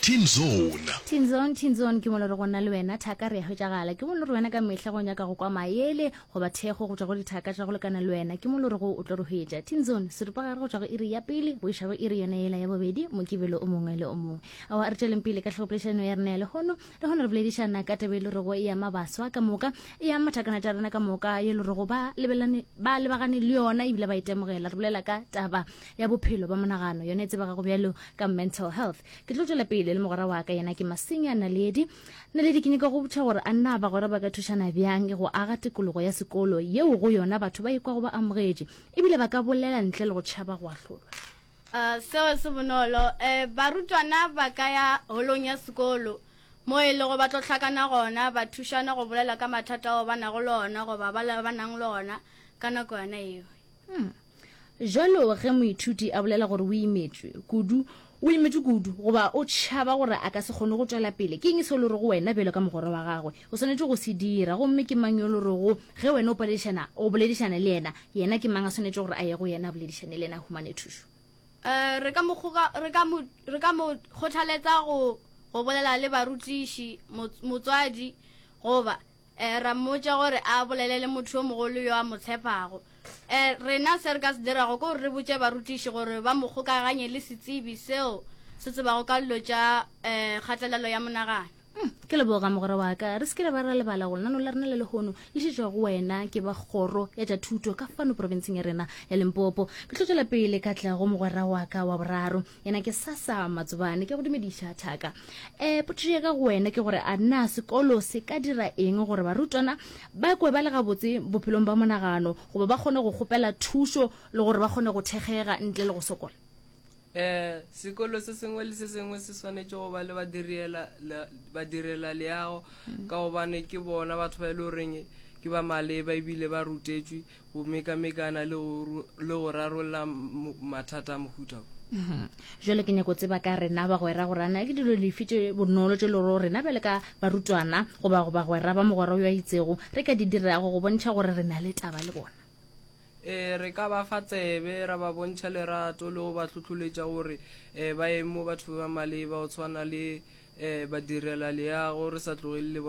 Teen Zone. Teen Zone, Teen Zone ke mo le re go nna le wena, thaka re a hwetšagala. Ke mo le re wena ka mehla go nyaka go kwa maele, goba thekgo go tšwa go dithaka tša go lekana le wena. Ke mo le re go o tlo re hwetša. Teen Zone, seripagare go tšwa go iri ya pele go iša go iri yona yela ya bobedi, Mokibelo o mongwe le o mongwe. Aowa, re tšweleng pele ka tlhogopoledišanong ya rena ya lehono. le gona re boledišana ka tebe e le rego e ama baswa ka moka e ama mathakana tša rena ka moka e le rego ba lebagane le yona ebile ba itemogela re bolela ka taba ya bophelo ba monagano yone e tsebagago bjalo ka mental health ke tlo tswela pele le mogwera wa ka yena ke masenya naledi naledi ke nyaka go botšha gore a nna bagwera ba ka thušana bjang go aga tikologo ya sekolo yeo go yona batho ba ikwago ba amogetše ebile ba ka bolela ntle le go tšhaba go ahlolwa Uh, seo se bonolo. Uh, barutwana ba ka ya holong ya sekolo mo e lego ba tlo hlakana gona ba thušana go bolela ka mathata ao ba nago le ona goba ba ba nang le ona ka nako yona eo. Hmm. Jalo ge moithuti a bolela gore o imetšwe kudu, o imetšwe kudu goba o tšhaba gore a ka se kgone go tšwela pele, ke eng se le re go wena bjalo ka mogwera wa gagwe? O swanetše go se dira. Gomme ke mang yo lo rego ge wena o paledišana, o boledišane le yena? Yena ke mang a swanetše gore a ye go yena a boledišane le yena a humane thušo? Uh, re ka mo kgoga, re ka mo, re ka mo kgothaletsa go, go bolela le barutiši, mots, motswadi, goba uh, ra mmotša gore a bolele le motho yo mogolo yo a mo tshepago. Uh, rena se re ka se dirago ke gore re botše barutiši gore ba mo kgokaganye le setsebi seo se tsebago ka dilo tša uh, kgatelelo ya monagano. Hmm, ke leboga mogwera wa ka re se ke re ba ra lebala go lenano la rena le lehono le šetšwa go wena ke ba kgoro ya tša thuto ka fano porofenseng ya rena ya lempopo ke tlo tswela pele ka tla go mogwera wa ka wa boraro yena ke sasa matsobane ke go dumediša thaka um potšišo ya ka go wena ke gore a na sekolo se ka dira eng gore barutwana ba kwe ba le gabotse bophelong ba monagano goba ba kgone go kgopela thušo le gore ba kgone go thekgega ntle le go sokola Ee, sekolo se sengwe le se sengwe se swanetše go ba le badiriela- la- badirelaleago ka gobane ke bona batho ba e le goreng ke ba maleba ebile ba rutetšwe go mekamekana le go ru- le go rarolla mo- mathata a mohuta wo. Mhm. Jwale ke nyako tseba ka rena bagwera gore ana ke dilo lefi tše bonolo tše le gore rena bjale ka barutwana goba go bagwera ba mogwera yo a itsego re ka di dirago go bontšha gore re na le taba le bona. Ee, re ka ba fa tsebe, ra ba bontšha lerato le go ba tlhotlholetša gore um ba eme mo batho ba ba maleba go tshwana le um badirelaleago, re sa tlogele le bona.